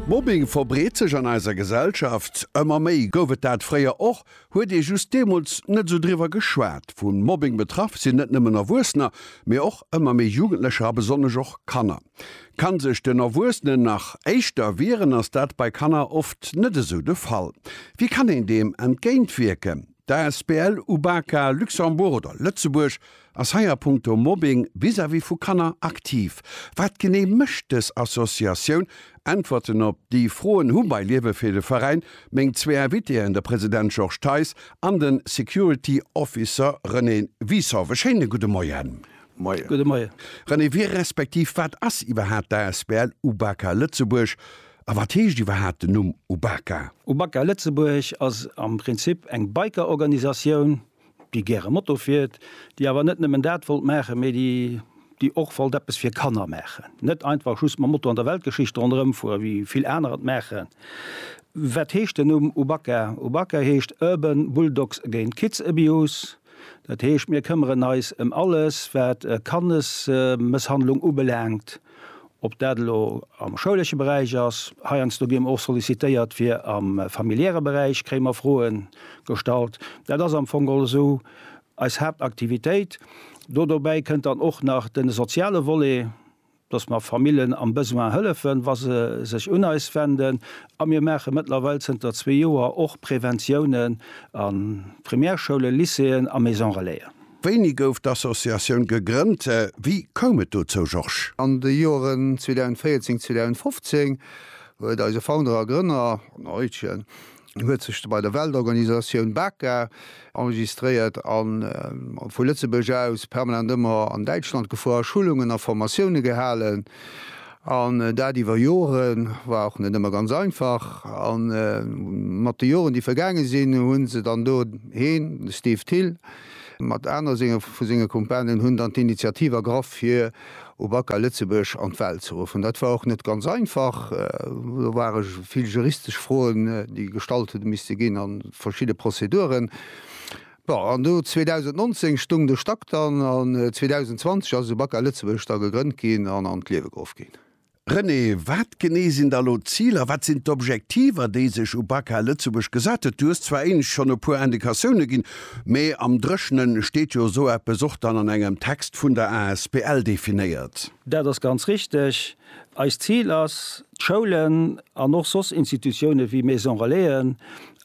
Mobbing verbreet sech an eiser Gesellschaft ëmmer méi. Gouf et dat fréier och, huet ee just deemools net esou driwwer geschwat. Vu Mobbing betraff sinn net nëmmen Erwuessener, mee och ëmmer méi Jugendlecher a besonnesch och Kanner. Kann sech den Erwuessenen nach éischter wieren, ass dat bei Kanner oft net esou de Fall. Wéi kann een deem entgéintwierken? D'Asbl Ubaka Luxembourg oder Lëtzebuerg ass hei a punkto Mobbing vis-à-vis vu Kanner aktiv. Wat genee mécht dës Associatioun? Äntwerten op déi Froen hu bei Liewe fir de Veräin meng zwee Invitéen, de President Georges Theis an de Security Officer René Wisow. E schéine gudde Moien. Moien. René, wie respektiv wat ass iwwerhaapt d'Asbl Ubaka Lëtzebuerg? A wat heescht iwwerhaapt den Numm Ubaka? Ubaka Lëtzebuerg ass am Prinzip eng Biker-Organisatioun, déi gäre Moto fiert, déi awer net nëmmen dat wollt maachen, mee déi och wollt eppes fir Kanner maachen. Net einfach just mam Moto an der Weltgeschicht ronderëm fueren, wéi vill aner et maachen. Wat heescht den Numm Ubaka? Ubaka heescht Urban Bulldogs Against Kids Abuse. Dat heescht, mir këmmeren eis ëm alles, wat Kannesmësshandlung ubelaangt. Ob dat elo am schoulesche Beräich ass, heiansdo gi mer och sollicitéiert fir am familiäre Beräich kréie mer Froe gestallt. Dat ass am Fong geholl esou eis Haaptaktivitéit. Do dobäi kënnt dann och nach de soziale Volet, dass mer Famillen am Besoin hëllefen, wa se sech un eis wenden. A mir maache mëttlerweil zënter zwee Joer och Preventiounen a Primärschoule, Lycéeën a Maison-relaisen. Wéini gouf d'Associatioun gegrënnt? Wéi koum et dozou, Georges? An de Joeren 2014, 2015 huet eise Founder a Grënner, den Eutjen, huet sech bei der Weltorganisatioun BACA enregistréiert a vu Lëtzebuerg aus permanent ëmmer an Däitschland gefuer, Schulungen a Formatioune gehalen. An dat iwwer Joren. War och net ëmmer ganz einfach. A mat de Joren, déi vergaange sinn, hu se dann do heen, de Steve Thill, Mat aner senge vu senge Kumpanen hunn dann d'Initiativ ergraff fir Ubaka Lëtzebuerg an d'Welt ze ruffen. Dat war och net ganz einfach. Do ware vill juristesch Froen, déi gestallt hu misste ginn a verschidde Prozeduren. Bon, an do 2019 stoung de Stack dann an 2020 ass Ubaka Lëtzebuerg da gegrënnt ginn an an d'Liewe geruff ginn. René, wat genee sinn da elo d'Ziler, wat sinn d'Objektiver, déi sech Ubaka Lëtzebuerg gesat huet? Du hues zwar éinescht schonn e puer Indikatioune ginn, mee am Dréchne steet jo esou eppes och dann an engem Text vun der asbl definéiert. Dat ass ganz richteg. Eist Zil ass, d'Schoulen an och soss Institutioune wéi Maison Relaisen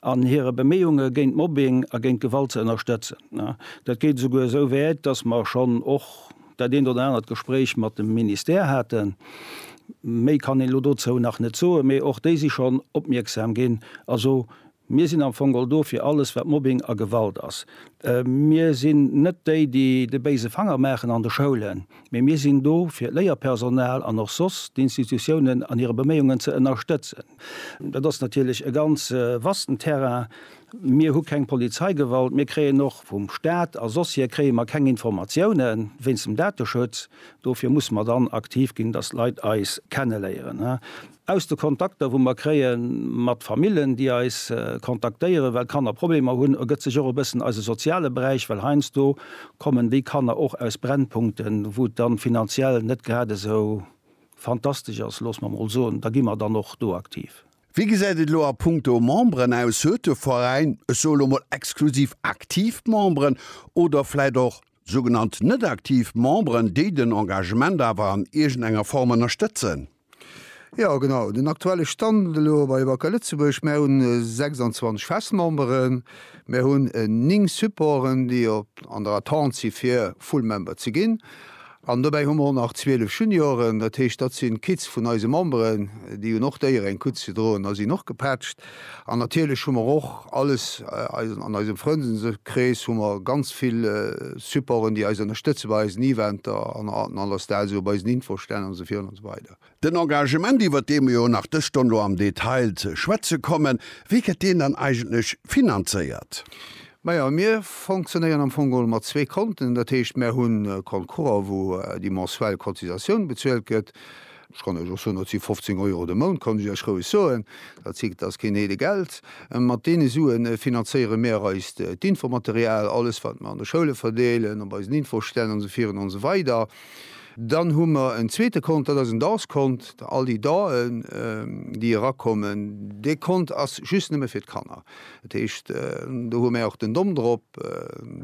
an hire Beméiunge géint Mobbing a géint Gewalt ze ënnerstëtzen. Dat geet esouguer esou wäit, dass mer schonn och, dat eent oder anert Gespréich mat dem Ministère haten. Méi kann een elo dozou nach net soen, mee och déi si schonn opmierksam ginn. Also mir sinn am Fong all do fir alles, wat Mobbing a Gewalt ass. Mir sinn net déi, déi de béise Fanger maachen an de Schoulen, mee mir sinn do fir d'Léierpersonal an och soss d'Institutiounen an hire Beméiungen ze ënnerstëtzen. Dat ass natierlech e ganz vasten Terrain. Mir hu keng Polizeigewalt, mir kréien och vum Staat a sosshier kréie mer keng Informatioune wéinst dem Dateschutz. Dofir musse mer dann aktiv ginn, datt d'Leit eis kenneléieren. Aus de Kontakter wou mer kréie mat Famillen, déi eis kontaktéieren, well d'Kanner Problemer hunn, ergëtt sech och e bëssen eise soziale Beräich, well heiansdo kommen déi Kanner och aus Brennpunkten, wou et dann finanziell net grad esou fantastesch ass, loosse mer mol soen. Da gi mer dann och do aktiv. Wéi gesäit et elo a punkto Memberen aus? Huet de Veräin, ech soe lo mol exklusiv aktiv Memberen oder vläit och sougenannt net-aktiv Memberen, déi den Engagement awer an iergendenger Form ënnerstëtzen? Jo, genau. Den aktuelle Stand elo bei Wacker Lëtzebuerg, Mär hunn 26 fest Memberen, mär hunn 9 Supporten, déi an der Attente si fir Full Member ze ginn. An dobäi hu mer och nach 12 Junioren, dat heescht, dat sinn d'Kids vun eise Memberen, déi hunn och d'Éier eng Kutz ze droen a sinn och gepatscht. An natierlech hu mer och alles, an eisem Frëndeskrees hu mer ganz vill Supporten, déi eis ënnerstëtze bei eisen Eventer an an allersdaags, esou bei eisen Infostänn an esou virun an esou weider. Den Engagement, iwwert dee mer jo nach dës Stonn elo am Detail ze schwätze kommen, wéi gëtt deen dann eigentlech finanzéiert? Majo, mir fonctionnéieren am Fong geholl mat zwee Konten. Dat heescht, mer hu Compte courant, wou déi mensuell Cotisatioun bezuelt gëtt. Ech kann Iech och soen, dat si 15 Euro de Mount, kann ech Iech roueg soen. Dat si, dat ass keen Heede Geld. Mat deene Suen finanzéiere mir eist d'Infomaterial, alles wat mer an de Schoule verdeelen, op eisen Infostänn an esou vir an esou weider. Dann hu mer en zweete Kont, dat ass en Danskont. All déi Daen, déi erakommen, dee Kont ass just nëmme fir d'Kanner. Dat heescht, do hu mär och den Dom drop.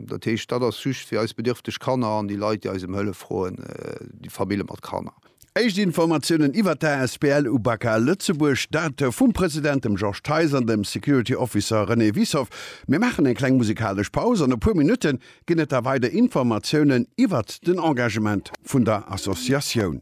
Dat heescht, dat ass just fir eis bedierfteg Kanner an déi Leit, déi eis ëm Hëllef froen, déi Famille mat Kanner. Éischt Informatiounen iwwert d'ASBL UBAKA Lëtzebuerg, dat vum President, dem Georges Theis, an dem Security Officer René Wiessow. Mir maachen eng kleng musikalesch Paus an e puer Minutten Ginn et da weider Informatiounen iwwert den Engagement vun der Associatioun?